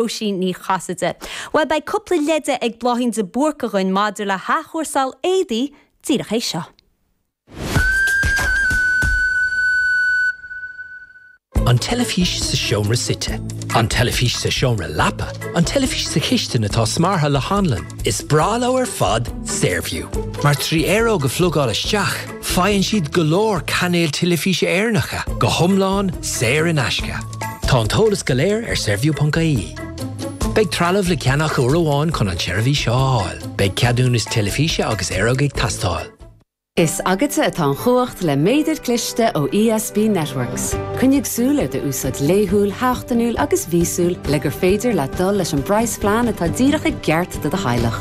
Róisín Ní Chasaide. Bhuel beidh cúpla leide ag Bláithín de Búrc againn maidir le hathchúrsáil éadaí díreach théis seo. An teilifís sa seomra suite. An teilifís sa seomra leapa. An teilifís sa chistin atá smeartha le hanlann. Is breá leo ar fad Saorview, mar trí aeróg a phlugáil isteach, Faigheann siad go leor cainéil teilifíse Éireannacha go hiomlán saor in aisce. Tá an t-eolas go léir ar saorview.ie. Beidh trealamh le ceannach uair amháin chun an tseirbhís seo a fháil. Beidh ceadúnas teilifíse agus aeróg ag teastáil. Is agatsa atá an chumhacht le méadair cliste ó ESB Networks. Coinnigh súil ar do úsáid laethúil, sheachtainiúil agus mhíosúil le gur féidir leat dul leis an bpraghas phlean atá díreach ceart do do theaghlach.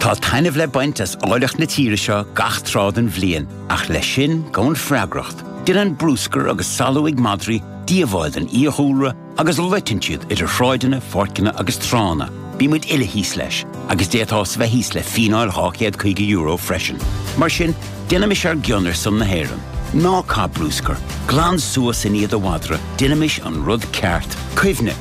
Tá taitneamh le baint as áilleacht na tíre seo gach tráth den bhliain, ach leis sin gabhann freagracht. Déanann bruscar agus salú madraí díobháil don fhiadhúlra agus loiteann siad idir shráideanna, pháirceanna agus tránna. Bímid uile thíos leis, agus d'fhéadfá bheith thíos le fíneáil €250 freisin. Mar sin, déanaimis ár gcion ar son na hÉireann. Ná caith bruscar. Glan suas i ndiaidh do mhadra. Déanaimis an rud ceart. Cuimhne.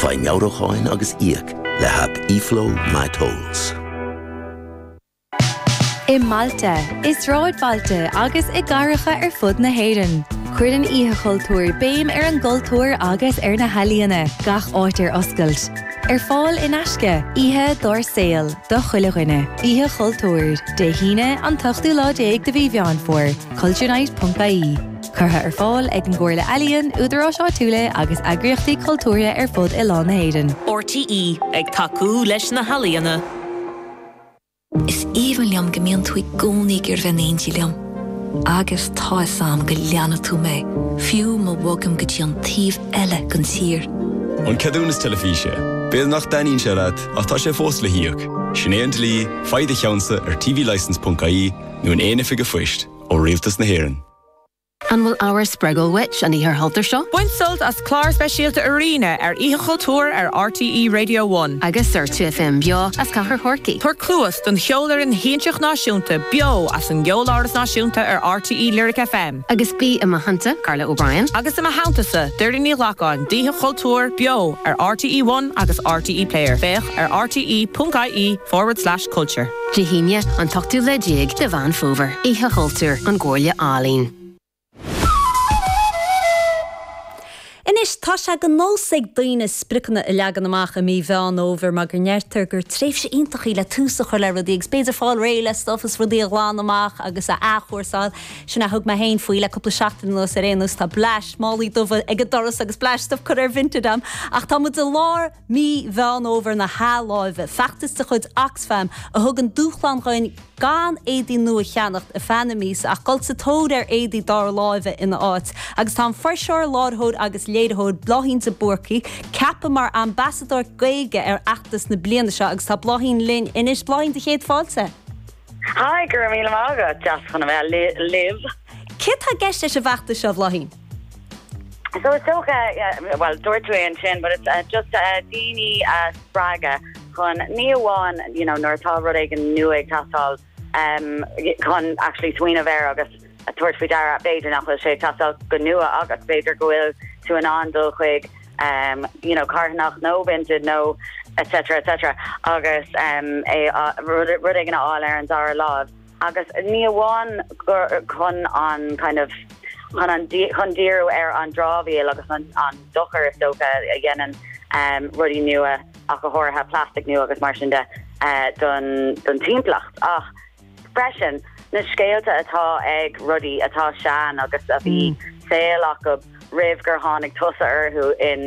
Faigh meabhrúcháin agus íoc le haip eFlow MyTolls. I mbailte, i sráidbhailte agus i gcathracha ar fud na hÉireann, cuireann Oíche Chultúir béim ar an gcultúr agus ar na healaíona, gach áit ar oscailt. Ar fáil in aisce, oíche dár saol do chuile dhuine. Oíche Chultúir, Dé hAoine, an t-ochtú lá déag de mhí Mheán Fómhair, culturenight.ie. Curtha ar fáil ag an gComhairle Ealaíon, údaráis áitiúla agus eagraíochtaí cultúrtha ar fud oileán na hÉireann. RTÉ, ag tacú leis na healaíona. Is aoibhinn liom go mbíonn tú i gcónaí ag iarraidh a bheith in éindí liom. Agus tá fhios agam go leanfaidh tú mé, fiú má bhogaim go dtí an taobh eile den tír. An ceadúnas teilifíse? B'fhéidir nach dtaitníonn sé leat, ach tá sé fós le híoc. Sin é an dlí, faigh do cheannsa ar tvlicence.ie nó in aon oifig an phoist ó Rialtas na hÉireann. An bhfuil ábhar spreagúil uait an Oíche Chultúir seo? Bain sult as clár speisialta Arena ar Oíche Chultúir ar RTÉ Radio One. Agus ar 2FM beo as Cathair Chorcaí. Tabhair cluas don Cheolfhoireann Shiansach Náisiúnta beo as an gCeoláras Náisiúnta ar RTÉ Lyric FM. Agus bí i mo theanntasa, Carla O'Brien. Agus i mo theanntasa, Doireann Ní Ghlacáin d'Oíche Chultúir beo ar RTÉ One agus RTÉ Player. Féach ar rte.ie forward slash. Culture. Dé hAoine, an t-ochtú lá déag de Mheán Fómhair, Oíche Chultúir, ón gComhairle Ealaíon. Anois, tá sé de nós ag daoine spriocanna a leagan amach i mí Mheán Fhómhair mar go ndeirtear gur tréimhse iontach í le tús a chur le rudaí agus b'fhéidir fáil réidh le stuif is rudaí a ghlanadh amach agus a athchúrsáil. Sin a thug mé féin faoi le cúpla seachtain anuas ar aon nós. Tá bleaist málaí dubha ag an doras agus bleaist stuif curtha ar Vinted agam ach tá muid i lár mí Mheán Fhómhair na hathláimhe, feachtas de chuid Oxfam a thugann dúshlán dhuinn gan éadaí nua a cheannacht i feadh na míosa ach dul sa tóir ar éadaí dara láimhe ina áit, agus tá an fuirseoir, láiritheoir agus léiritheoir Bláithín de Búrca ceaptha mar ambasadóir Gaeilge ar fheachtas na bliana seo agus tá Bláithín linn anois. Bláithín, Dé, céad fáilte! Haigh, go raibh míle maith agat, deas chun a bheith libh! Céard atá i gceist leis an bhfeachtas seo, Bhláithín? So is dócha, bhuel dúirt tú é ansin, but it's just daoine a spreagadh chun ní amháin you know nuair atá rud éigin nua ag teastáil um chun actually smaoineamh air agus tabhairt faoi deara b'fhéidir nach bhfuil sé ag teastáil go nua agus b'fhéidir go bhfuil tú in ann dul chuig um you know carthanach nó Vinted nó etc etc agus um é rud éigin a fháil ar an dara láimh. Agus ní amháin gur chun an kind of chun an chun díriú ar an dramhaíl agus an an dochar is dócha a dhéanann rudaí nua ach go háirithe plastic nua agus mar sin de don don timpeallacht ach freisin na scéalta atá ag rudaí atá sean agus a bhí saol acu roimh gur tháinig tusa orthu in